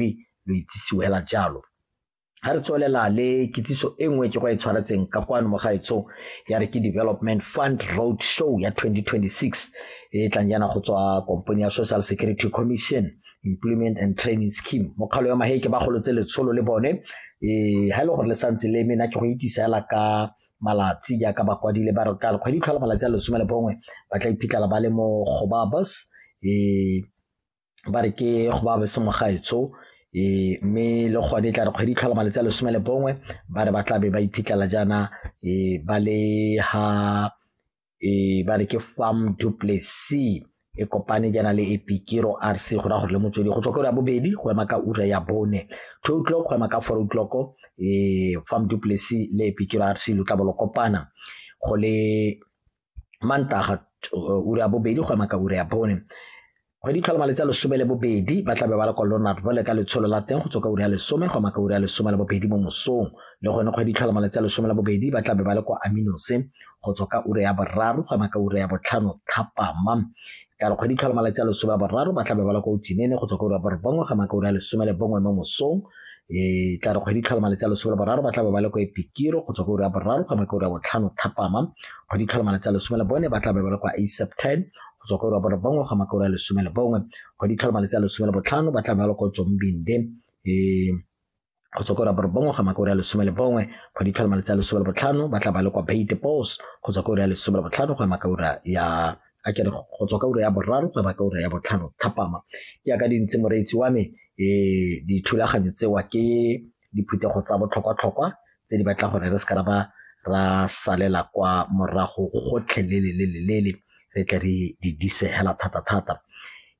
mme lo itsisiwe hela jalo ga re tswelela le kitsiso e nngwe ke go e tshwaretseng ka kwano mo gaetsong ya re ke development fund road show ya 2026 e tlang yana go tswa kompone ya social security commission employment and training scheme mokgalo ya maheke ba golotse letsholo le bone um ga e le gore le santse le mena ke go itisa fela ka malatsi jaaka ba kwadile ba re ka kgwedi tlhola malatsi a lesome le bongwe ba tla iphitlhela ba le mo gobabus um ba re ke go ba bese mogaetsho e mme le gone tla re kgwedi tlhola malatsi a lesome le bongwe ba re ba tla be ba iphitlhela jaana e ba le ha e ba re ke farm duplessi e kopane jaana le epikiro r c go raya gore le motswedi go tswa ka ura ya bobedi go ema ka ura ya bone two o'clock go ema ka four o'clock e farm duplessi le epikiro r c lo tla bo lo kopana go le mantaga uh, ura ya bobedi go ema ka ura ya bone kgwedi tlhola malatsi a lesome le bobedi ba tlabe ba le kwa lonard bole ka letsholo la teng go tswa ka ura ya lesome go ema ka ura ya lesome le bobedi mo mosong le gone kgwedi tlhola malatsi a lesome le bobedi ba tlabe ba le kwa aminose go tswa ka ura ya boraro go ema ka ura ya botlhano thapama ka re kgwedi tlhola malatsi a lesome a boraro ba tlabe ba la ko utinene go tswa ko ba re bongwe ga makaone a lesome le bongwe mo mosong e tla re kgwedi tlhola malatsi a lesome le boraro ba tlabe ba le ko epikiro go tswa ko ura ya boraro ga makaone a botlhano thapama kgwedi tlhola malatsi a lesome le bone ba tlabe ba le kwa aseptan go tswa ko ura ya bone bongwe ga makaone a lesome le bongwe kgwedi tlhola malatsi a lesome le botlhano ba tlabe ba le ko jombinde e Go tswa ko Raborobongwe go ama ka ura ya lesome le bongwe, go ditlhola malatsi a lesome le botlhano, ba tla ba le kwa Bay Depots go tswa ka ura ya lesome le botlhano go ama ka ura ya a kere go tswa ka ura ya boraro go ema ka ura ya botlhano thapama ke yaka di ntse moreetsi wa me um dithulaganyo tsewa ke diphuthego tsa botlhokwa-tlhokwa tse di batla gore re se ka ba ra salela kwa morago gotlhelelelelele re tle re di disegela thata-thata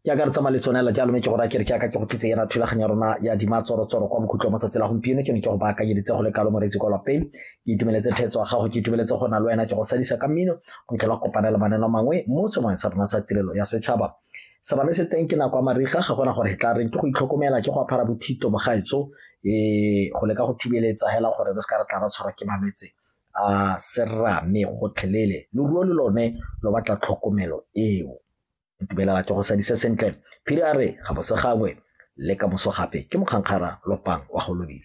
ke a ka re tsamaya le tsone la jalo mme ke gore a kere ke aka ke go tlitse yana thulaganyo ya rona ya dimatsorotsoro kwa mokhutlo wa matsatsi la gompieno ke ne ke go baakanyeditse go le kalo moreetsi kwa lapeng ke itumeletse thetso ya gago ke itumeletse go na le wena ke go sadisa ka mmino go tlhola kopanela maneno mangwe mo tsomong sa rona sa tirelo ya setšhaba Serame se teng ke nako ya mariga ga gona gore e tla reng ke go itlhokomela ke go apara bothito bogaetso um go leka go thibeletsa hela gore re se ka re tla ra tshwarwa ke malwetse a serame gotlhelele loruo le lone lo batla tlhokomelo eo itumelela ke go sadise sentle phiri a re ga bosegangwe le ka boso gape ke mokgankgara lopang wa go lobile